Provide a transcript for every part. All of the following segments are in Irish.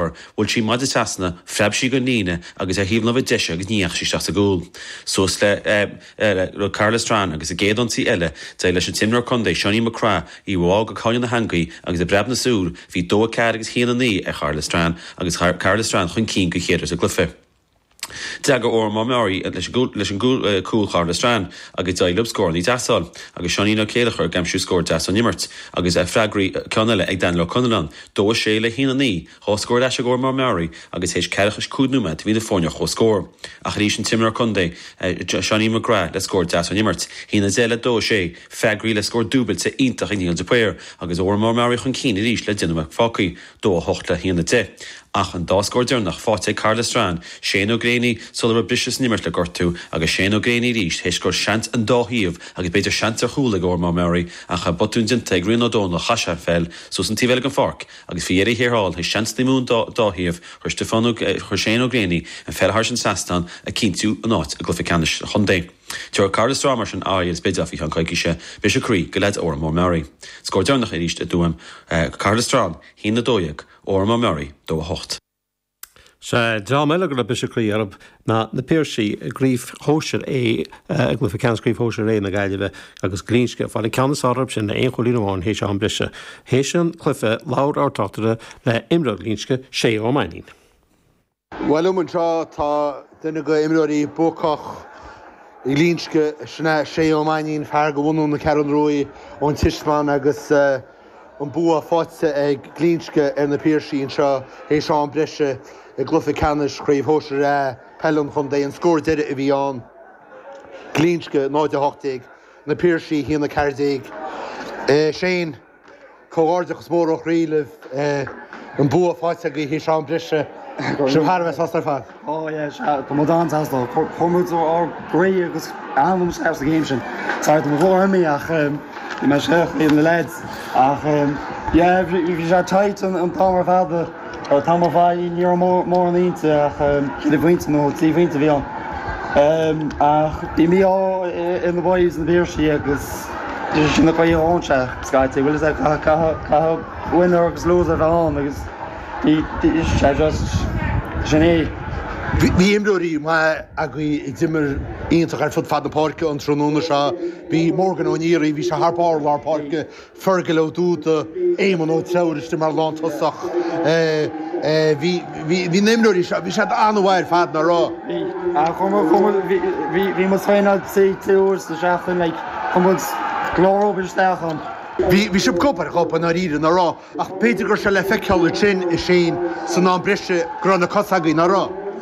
Mar bhuail sí an maide trasna, phreab sí den líne agus ar thaobh na láimhe deise agus ní dheachaigh sí isteach sa gcúl. Suas le Cathair Loistreáin agus sa gcéad ionsaí eile, d'éirigh leis an t-imreoir contae Johnny McGrath í a bhá go cúinne na heangaí agus i bpreabadh na súl bhí dó a ceathair agus a haon a naoi ar Chathair Loistreáin agus Cathair Loistreáin chun cinn don chéad uair sa gcluife. D'fhreagair Órán Mór Meáraí leis an gcúl Chathair Loistreáin agus d'éirigh leo scórannaí deasa a fháil agus Seáinín Ó Céilleachair ag aimsiú scór deas ón imirt agus freagraí ceann eile ag Daniel Ó Conalláin, dó a sé le haon a naoi. Dhá scór ar ais ag Órán Mór Meáraí agus théis ceathracha is cúig nóiméad bhí na foirne ar chomhscór. Ach arís an t-imreoir contae, Johnny McGrath le scór deas ón imirt. A haon a deich le dó a sé, freagraíodh le scór dúbailte iontach ag Niall de Paor agus Órán Mór Meáraí chun cinn arís le deich nóiméad fágthaí. 2 8 le 1 10. Ach an dá scór deireanach faighte ag Cathair Loistreáin, Shane Ó Gréanaí sula raibh briseadh san imirt le gortú, agus Shane Ó Gréanaí arís théis go raibh seans ag an dá thaobh agus b'fhéidir seans ar chúl ag Órán Mór Meáraí ach botún déanta ag Rian Ó Dónaill chaith sé an pheil suas an taobh eile den pháirc agus faoi dheireadh thiar thall théis seansannaí ón dá thaobh chuir Shane Ó Gréanaí an pheil thairis an trasnán ag cinntiú an áit i gcluiche ceannais an chontae. Tá Cathair Loistreáin mar sin, in aghaidh an Spidéil faoi cheann coicíse, briseadh croí do leaids Órán Mór Meáraí. Scór deireanach arís i dTuaim, Cathair Loistreáin, 1 12, Órán Mór Meáraí, 2 8. Sea, dream eile go raibh briseadh croí orthu ná na Piarsaigh, i gCraobh Shóisir A, i gcluife ceannais Chraobh Shóisir A na Gaillimhe agus Glinsce, ag fáil an ceann is fearr orthu sin le haon chúilín amháin théis am breise. Théis an cluife, labhair ár dtráchtaire le himreoir Ghlinsce, Shay Ó Mainnín. Bhuel, liom anseo, tá duine de imreoirí buacach Ghlinsce, Shay Ó Mainnín, fear de bhunú na Ceathrún Ruaidh ón Tismeán agus an bua faighte ag Glinsce ar na Piarsaigh anseo théis am breise i gcluiche ceannais Chraobh Shóisir A Peile an Chontae. An scór deiridh a bhí ann, Glinsce 0, 18, Na Piarsaigh 1, 14. Shane. Comhghairdeachas mór ó chroí libh, an bua faighte agaibh théis am breise. Sibh thar a bheith sásta ar fad. Ó yeah, sea, tá muid an-sásta. Chuir muid ár gcroí agus anam isteach sa ngéim sin. Sorry, tá mo ghlór imithe ach ní mé a scríobh, ní na leaids. Ach yeah, bhí sé tight an t-am ar fad. Tá mo bhaile ní raibh mórán inti ach ceithre phointe nó trí phointe a bhí ann. Ach bhí mí-ádh ar na boys sna Piarsaigh agus sin é an chaoi a dtéann sé scaití. Bhuel, is é, caithfidh winner agus loser a bheith ann agus sea, just sin é. Bhí imreoirí maithe agaibh a d'imir iontach ar fud fad na páirce an tráthnóna seo. Bhí Morgan Ó Neary, bhí sé thar barr lár páirce Fergal Ó Dúda, Éamonn Ó Treabhair istigh mar lántosach. Bhí na imreoirí seo, bhí siad an-mhaith ar fad ná raibh? Bhí sibh gob ar ghob i ndáiríre, ná raibh? Ach b'fhéidir go raibh sé le feiceáil ansin, a Shane, san am breise, go raibh na cosa agaibh, ná raibh?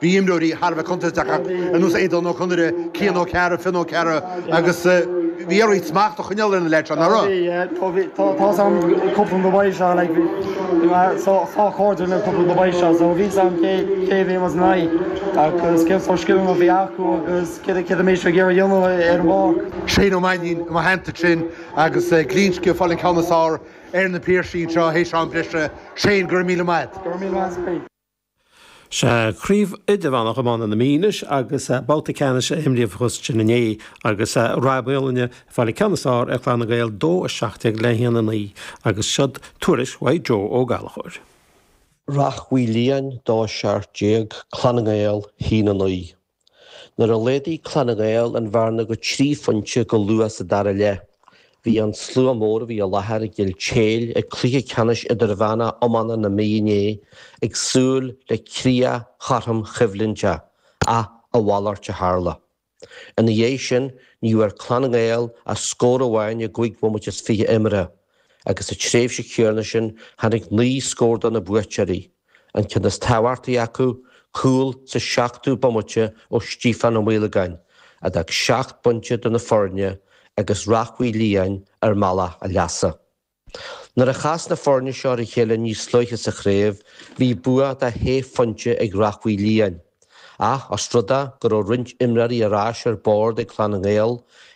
Bhí imreoirí thar a bheith contúirteacha ar nós Aodhán Ó Conaire, Cian Ó Cearra, Fionn Ó Cearra agus bhí oraibh smacht a choinneáil ar na leaids seo, nach raibh? Shane Ó Mainnín inár dteannta ansin agus Glinsce ag fáil an ceann is fearr ar na Piarsaigh anseo théis am breise. Shane, go raibh míle maith agat. Sea, craobh idirmheánach iomána na Mí anois agus babhta ceannais a imríodh fós sin inné agus Ráth Moliain ag fáil an ceann is fearr ar Chlann na nGael, 2-17 le 1-9, agus siod tuairisc Mhaidhc Joe Ó Gallchóir. Ráth Moliain, 2-17, Clann na nGael, 1-9. Nuair a laghdaigh Clann na nGael an bhearna go trí phointe go luath sa dara leath, bhí an slua mór a bhí i láthair i gCill Táile ag cluiche ceannais Idirmheánach Iomána na Mí inné ag súil le críoch chothrom choimhlinte ach a mhalairt a tharla. Ina dhiaidh sin, ní bhfuair Clann na nGael ach scór amháin i gcúig bhomaite is fiche imeartha agus sa tréimhse chéanna sin tháinig naoi scór do na buaiteoirí. an ceann is tábhachtaí acu, cúl sa seachtú bomaite ó Stíofán Ó Maolagáin, a d'fhág seacht bpointe idir na foirne agus Ráth Moliain ar mbealach a leasa. Nuair a chas na foirne seo ar a chéile níos luaithe sa chraobh, bhí bua de shé phointe ag Ráth Moliain, ach os rud é go raibh roinnt imreoirí ar ais ar bord ag Clann na nGael,